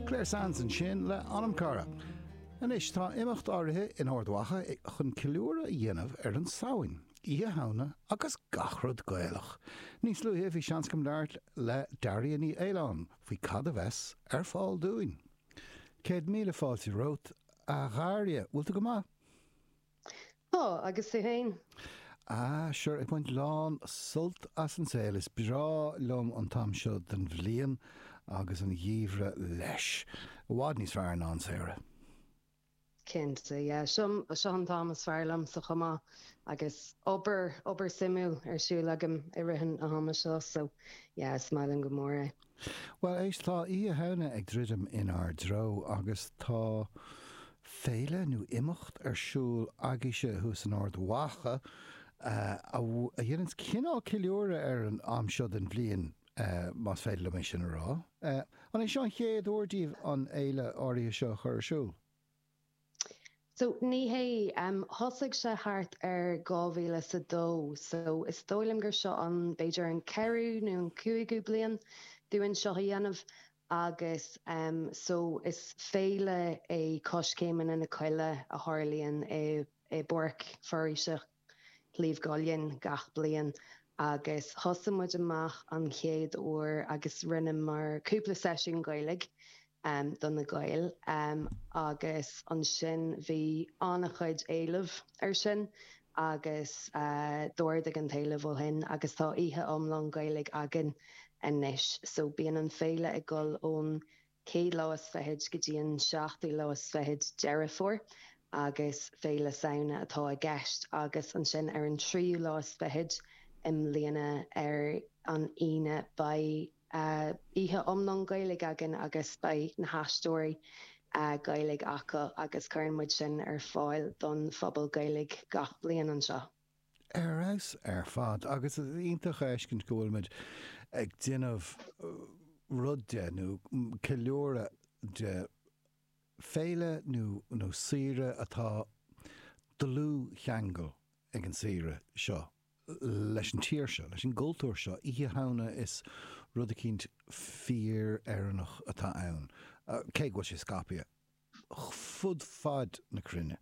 Clare Sands ansin le Anam Cara. Anois tá imeacht áirithe in Ard Mhacha chun ceiliúradh a dhéanamh ar an Samhain, Oíche Shamhna agus gach rud Gaelach! Níos luaithe bhí seans agam labhairt le Daria Ní Fhaoláin faoi cad a bheas ar fáil dúinn. Céad míle fáilte romhat, a Dharia. Bhfuil tú go maith? Tá, agus tú féin? Ah, sure, ag baint lán sult as an saol. Is breá liom an t-am seo den bhliain agus an geimhreadh leis. I bhfad níos fearr ná an samhradh. Cinnte, yeah. Seo, seo an t-am is fearr liomsa chomh maith agus obair, obair shuimiúil ar siúl agam i rith an ama seo, so yeah, is maith liom go mór é. Bhuel, éist, tá Oíche Shamhna ag druidim inár dtreo agus tá féile nó imeacht ar siúl agaibhse thuas in Ard Mhacha a dhéananns cineál ceiliúradh ar an am seo den bhliain, más féidir liom sin a rá. An é seo an chéad uair daoibh an fhéile áirithe seo a chur ar siúl? So, ní hé. Thosaigh sé thart ar dhá mhíle 's a dó, so is dóigh liom gur seo an, b'fhéidir an ceathrú nó an cúigiú bliain dúinn seo a dhéanamh agus so is féile é Coiscéimeanna na Coille a tharlaíonn i bPáirc Foraoise Sliabh gCuillinn gach bliain agus thosaigh muid amach an chéad uair agus rinneamar cúpla seisiún Gaeilge do na Gaeil agus ansin bhí an-chuid éileamh ar sin agus d'ardaigh an t-éileamh ó shin agus tá oíche iomlán Gaeilge againn anois so bíonn an féile ag dul ón chéad lá is fichid go dtí an seachtú lá is fichid, Deireadh Fómhair, agus Féile Samhna atá i gceist, agus ansin ar an tríú lá is fichid i mbliana ar an Aoine beidh oíche iomlán Gaeilge againn agus beidh na haisteoirí Gaeilge acu agus cuireann muid sin ar fáil don phobal Gaeilge gach bliain anseo. Ar fheabhas ar fad agus is iontach é a fheiscint go bhfuil muid ag déanamh rud de, nó ceiliúradh de, féile nó saoire atá dlúthcheangal ag an saoire seo leis an tír seo, leis an gcultúr seo. Oíche Shamhna is rud eicínt fíor-Éireannach atá ann, cé go bhfuil sé scaipthe. fud fad na cruinne.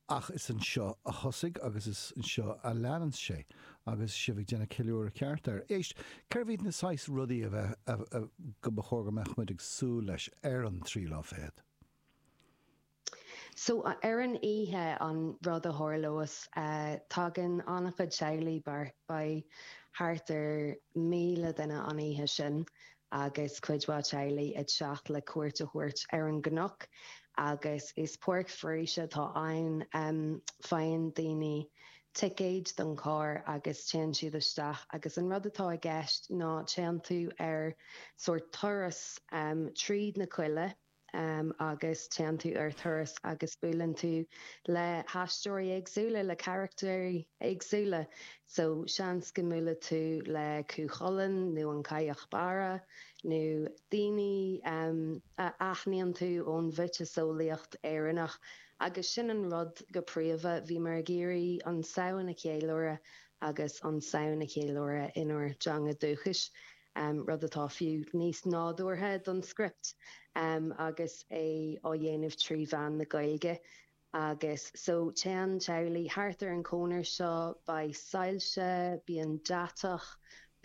Ach is anseo a thosaigh agus is anseo a leananns sé. Agus sibh ag déanamh ceiliúradh ceart air. Éist, cé hiad na saghas rudaí a bheith, a, a, go mba chóir go mbeadh muid ag súil leis ar an tríú lá fichead? So, ar an oíche, an rud a tharlós, tagann an-chuid teaghlaigh, beidh thart ar 1,000 duine an oíche sin, agus cuid mhaith teaghlaigh ag teacht le cuairt a thabhairt ar an gcnoc agus is páirc foraoise atá ann. Faigheann daoine ticéid don charr agus téann siad isteach agus an rud atá i gceist ná téann tú ar sórt turas tríd na coille, agus téann tú ar thuras agus buaileann tú le haisteoirí éagsúla, le carachtair éagsúla so seans go mbuailfidh tú le Cú Chulainn nó an Chailleach Bhéarra nó daoine a aithníonn tú ón mhiotaseolaíocht Éireannach agus sin an rud go príomha. Bhíomar ag iarraidh an Samhain a cheiliúradh agus an Samhain a cheiliúradh inár dteanga dúchais. rud atá fiú níos nádúrtha don script agus é á dhéanamh trí mheán na Gaeilge agus so téann teaghlaigh thart ar an cónair seo, beidh soilse, bíonn deatach,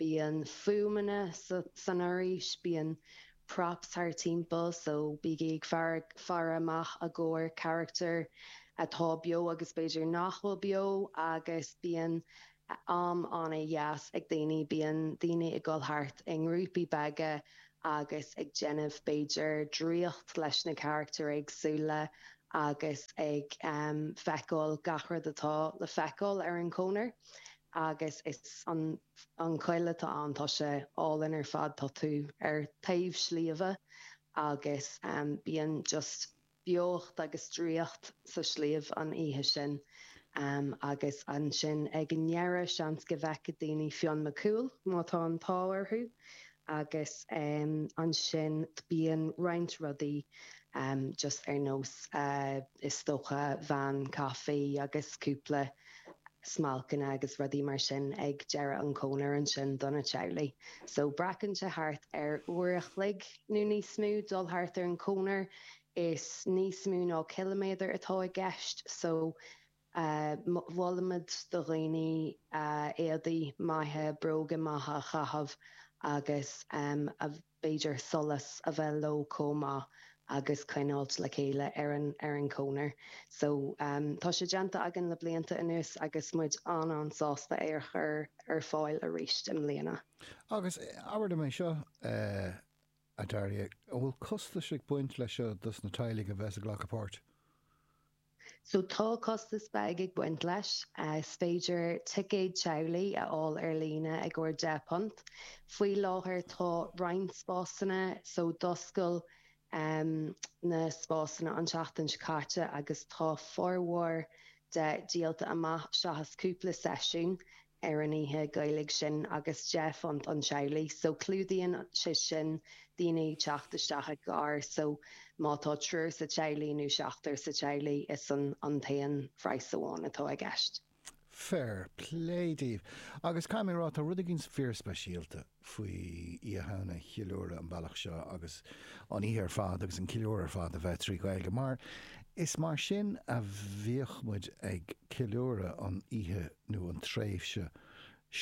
bíonn fuaimeanna san fhoraois, bíonn props thart timpeall so bígí ag faire amach i gcomhair carachtar atá beo agus b'fhéidir nach bhfuil beo agus bíonn am an-deas ag daoine, bíonn daoine ag dul thart i ngrúpaí beaga agus ag déanamh b'fhéidir draíocht leis na carachtair éagsúla agus ag feiceáil gach rud atá le feiceáil ar an chonair agus is an choill atá ann, tá sé álainn ar fad, tá tú ar taobh sliabha agus bíonn just beocht agus draíocht sa sliabh an oíche sin agus ansin ag an ndeireadh seans go bhfeicfidh daoine Fionn Mac Cumhaill má tá an t-ádh orthu agus ansin bíonn roinnt rudaí just ar nós is dócha veain caife agus cúpla smailceanna agus rudaí mar sin ag deireadh an chónair ansin do na teaghlaigh. So glacann sé thart ar uair a chloig nó níos mó dul thart ar an chónair. is níos mó ná ciliméadar atá i gceist so molaimid do dhaoine éadaí maithe, bróga maithe a chaitheamh agus b'fhéidir solas a bheith leo chomh maith agus coinneáilt le chéile ar an chonair. So tá sé déanta againn le blianta anuas agus muid an-an-sásta é a chur ar fáil arís i mbliana. Agus abair liom é seo. a Dearbháil an bhfuil costas ag baint leis seo dos na teaghlaigh a bheas ag glacadh páirt. So tá costas beag ag baint leis. Is féidir ticéad teaghlaigh a fháil ar líne ar 10 punt. Faoi láthair tá roinnt spásanna so d'oscail na spásanna an tseachtain seo caite agus tá formhór de díolta amach seachas cúpla seisiún. ar an oíche Ghaelaigh sin agus deich phunt an teaghlach so clúdaíonn sé sin daoine ag teacht isteach i gcarr so má tá triúr sa teaghlach nó seachtar sa teaghlach is an an t-aon phraghas amháin atá i gceist. Fair play daoibh. Agus caithfidh mé a rá, tá rud éigin fíorspeisialta. faoi Oíche Shamhna a cheiliúradh ar an bealach seo agus an oíche ar fad agus an ceiliúradh ar fad a bheith trí Ghaeilge mar is mar sin a bhíodh muid ag ceiliúradh an oíche nó an tréimhse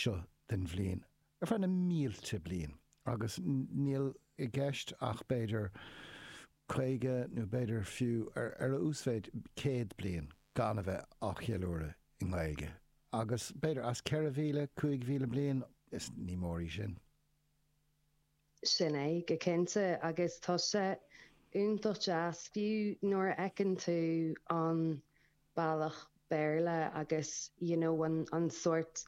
seo den bhliain ar feadh na mílte bliain agus níl i gceist ach b'fhéidir 50 nó b'fhéidir fiú ar a uasmhéid 100 bliain gan a bheith á cheiliúradh i nGaeilge agus b'fhéidir as 4,000, 5,000 bliain is ní mór í sin. Sin é, go cinnte, agus tá sé iontach deas fiú nuair a fheiceann tú an bealach Béarla agus you know an sórt,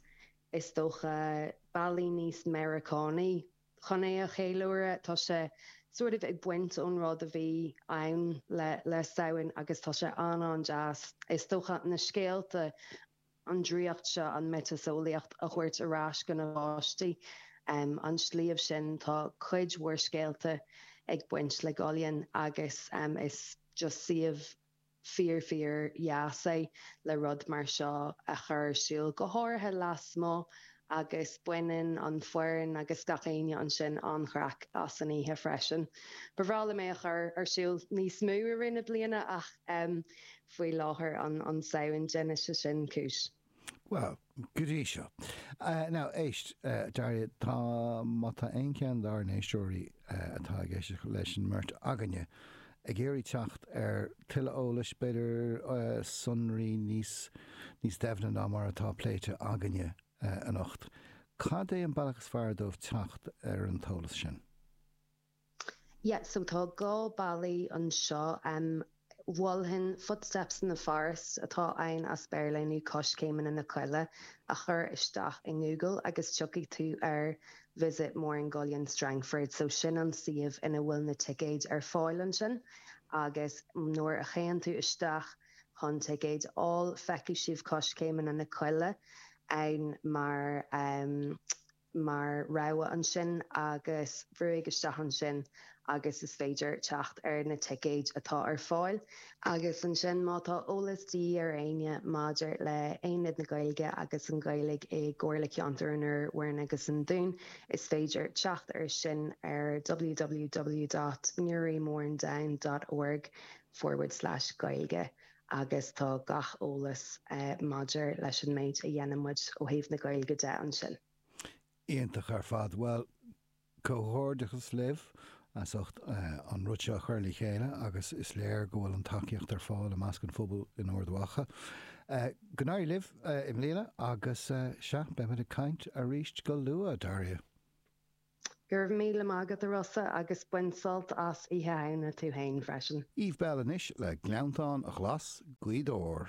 is dócha, bealaí níos Meiriceánaí. chun é a cheiliúradh. Tá sé sort of ag baint ón rud a bhí ann le le Samhain agus tá sé an-an-deas, is dócha, na scéalta, an draíocht seo, an mhiotaseolaíocht a thabhairt ar ais do na páistí. An sliabh sin, tá cuid mhór scéalta ag baint le gCuillinn agus is just suíomh. fíor fíordheas é le rud mar seo a chur ar siúl, go háirithe lasmuigh agus baineann an fhoireann agus gach éinne ansin an-chraic as an oíche freisin. Ba bhreá liom é a chur ar siúl níos mó i rith na bliana ach faoi láthair an Samhain, déanfaidh sé sin cúis. Bhuel, go dtí seo. Now, éist, Daria, tá, má tá aon cheann dár n-éisteoirí atá ag éisteacht leis an mbeirt againne ag iarraidh teacht ar thuilleadh eolais, b'fhéidir, sonraí níos, níos doimhne ná mar atá pléite againne anocht, cad é an bealach is fearr dóibh teacht ar an t-eolas sin? Yeah, so tá dhá bealaí anseo. Mholfainn Footsteps in the Forest, atá ann as Béarla, nó Coiscéimeanna na Coille, a chur isteach i nGoogle agus tiocfaidh tú ar Visit Mourne Gullion Strangford, so sin an suíomh ina bhfuil na ticéid ar fáil ansin agus nuair a théann tú isteach chun ticéid a fháil feicfidh sibh Coiscéimeanna na Coille ann mar. mar rogha ansin agus brúigh isteach ansin agus is féidir teacht ar na ticéid atá ar fáil. Agus ansin má tá eolas de dhíth ar éinne maidir le hAonad na Gaeilge agus an Ghaeilge i gComhairle Ceantair an Iúir, Mhúrn agus an Dúin is féidir teacht air sin ar www.newrymournedown.org forward slash gaeilge. agus tá gach eolas maidir leis an méid a dhéanann muid ó thaobh na Gaeilge de ansin. Iontach ar fad. Bhuel, comhghairdeachas libh as ucht an rud seo a chur le chéile agus is léir go bhfuil an tacaíocht ar fáil i measc an phobail in Ard Mhacha. Go n-éirí libh i mbliana agus, sea, beimid ag caint arís go luath, Daria. Go raibh míle maith agat, a Rossa, agus bain sult as Oíche Shamhna tú féin freisin. Eve Belle anois le Gleanntáin Ghlas' Ghaoth Dobhair.